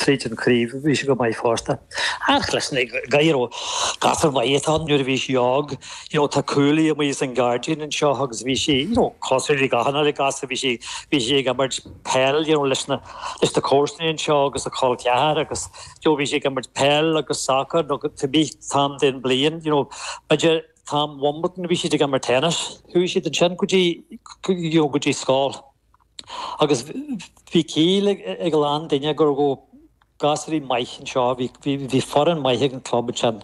tríd an craobh. Bhí sé go maith fosta. Ach leis na gadhair ó gasúr maith atá ann, nuair a bhí sé óg, you know, tá cuaillí amuigh san gairdín anseo agus bhí sé, you know, cosúil le gach uile ghasúr, bhí sé, bhí sé ag imirt peil, you know, leis na, leis na comharsanaí anseo agus a col ceathar agus, you know, bhí sé ag imirt peil agus sacar nó cibé t-am den bliain, you know, b'fhéidir t-am Wimbledon bhí siad ag imirt tennis. Chuaigh siad ansin go dtí, you know, go dtí scoil. Agus bhí ciall ag a lán duine gur go raibh gasúraí maith anseo, bhí foireann maith ag an club ansin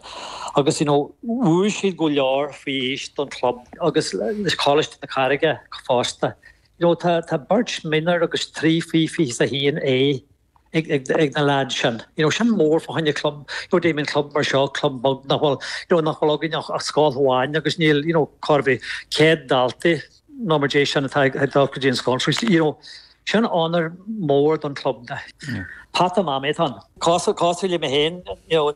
agus you know bhuaigh siad go leor faoi aois don club agus le Coláiste na Carraige fosta. You know tá beirt minor agus trí faoi 21A. ag na leaids sin. Sin mór fá choinne club, I mean club mar seo, club beag nach bhfuil, nach bhfuil againn ach scoil amháin agus níl, cibé, 100 daltaí nó mar dhéis sin atá ag dul go dtí an scoil. Sin onóir mór don club. Peata Mamaí atá ann. Cosúil le mé féin,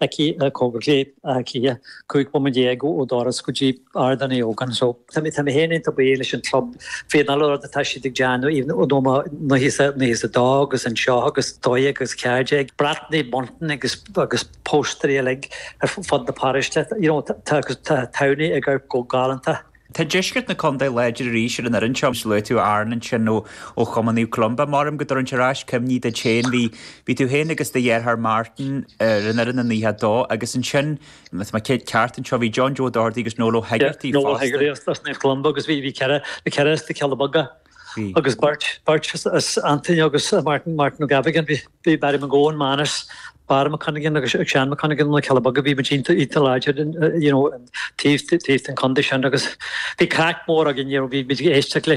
aici cóngarach i mBaile Átha Cliath, 15 bhomaite ó dhoras go dtí Ardán Uí Ógáin. So, tá mé féin iontach buíoch leis an chlub faoin uile rud atá siad ag déanamh, you know mar 92 agus anseo agus 12 agus 14, brataí, bunting agus agus póstaeir uilig ar fud na paróiste, you know, tá Towney ag amharc go galánta. Tá deisceart na condae láidir arís ar an fhoireann seo, agus luaigh tú Aaron ansin ó Chumann Naomh Columba. Maram go dtabharann sé ar ais cuimhní duit féin, bhí bhí tú féin agus do dheartháir Martin ar an fhoireann in 92 agus ansin, má tá mé ceart anseo, bhí John Joe Doherty agus Noel Ó hEigeartaigh fosta. Noel Ó Hegarty as Naomh Columba agus bhí bhí ceithre ceithre as na Cealla Beaga. Bhí. agus beirt beirt as Antaine agus Martin Martin O'Gavigan. Bhí bhí Barry McGowan, Manus, Barra Mac Cuinneagáin agus Seán Mac Cuinneagáin na Cealla Beaga. Bhí muid iontach iontach láidir in eh, you know, an taobh ta- taobh den contae sin agus bhí craic mhór againn, you know, bhí muid ag éisteacht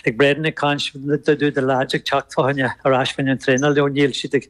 le Brendan ag caint, na- do do do lads ag teacht abhaile ar ais faoin an traenáil, you know, níl siad ag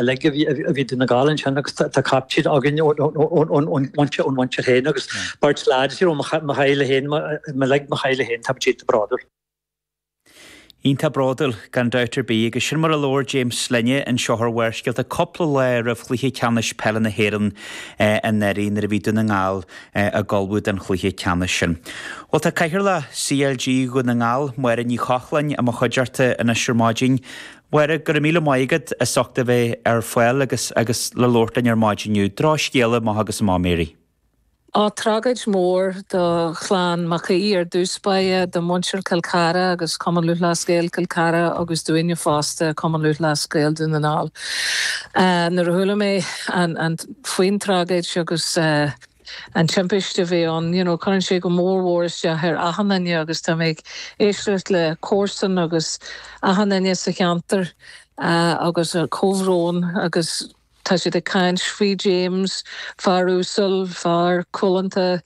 uilig a bhí Dún na nGall ansin agus tá captaen againn ón mhuintir féin agus beirt leaid ó mo theaghlach féin, uilig mo theaghlach féin, tá muid iontach bródúil. Iontach bródúil, gan dabht ar bith, agus sin mar a labhair James linne anseo ar Bharrscéalta, cúpla lá roimh chluiche ceannais peile na hÉireann anuraidh nuair a bhí Dún na nGall ag ullmhú don chluiche ceannais sin. Bhuel, tá cathaoirleach CLG Dhún na nGall, Máire Ní Chochláin, i mo chuideachta anois ar maidin, Máire, Go raibh míle maith agat as ucht a bheith ar fáil agus agus le labhairt linn ar maidin inniu. Drochscéala amach agus amach Mary. Á, tragóid mhór do chlann Mac Aoidh ar dtús báire, do mhuintir Cill Chartha agus Cumann Lúthchleas Gael Cill Chartha agus dúinne fosta, Cumann Lúthchleas Gael Dún na nGall. Nuair a chuala mé an an faoin tragóid agus eh, an timpiste a bhí ann, you know cuireann sé go mór mór isteach ar achan duine agus tá mé ag éisteacht le comharsana agus achan duine sa cheantar agus a chomhbhrón agus tá siad ag caint faoi James, fear uasal, fear cúlánta,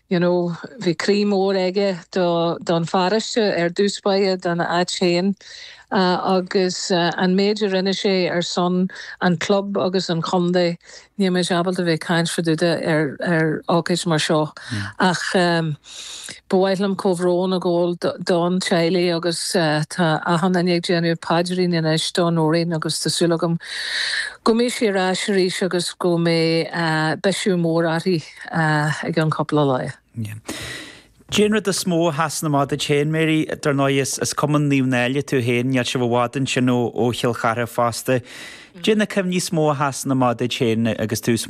you know bhí croí mór aige don pharóiste ar dtús báire, dona áit féin agus an méid a rinne sé ar son an chlub agus an chontae, Níl muid ábalta bheith ag caint fá dtaobh de ar ócáid mar seo ach ba mhaith liom comhbhrón a ghabháil don teaghlach agus tá achan duine ag déanamh paidirín anois do Nóirín agus tá súil agam go mbeidh sí ar ais arís agus go mbeidh biseach mór uirthi ag an cúpla lá. Caidé an rud is mó a sheasann amach duit féin, Mary? Dar ndóigh, is Cumann Naomh Náille tú féin, níl sibh i bhfad ansin ó Chill Chartha fosta. Caidé na cuimhní is mó a sheasann amach duit féin agus tú sm.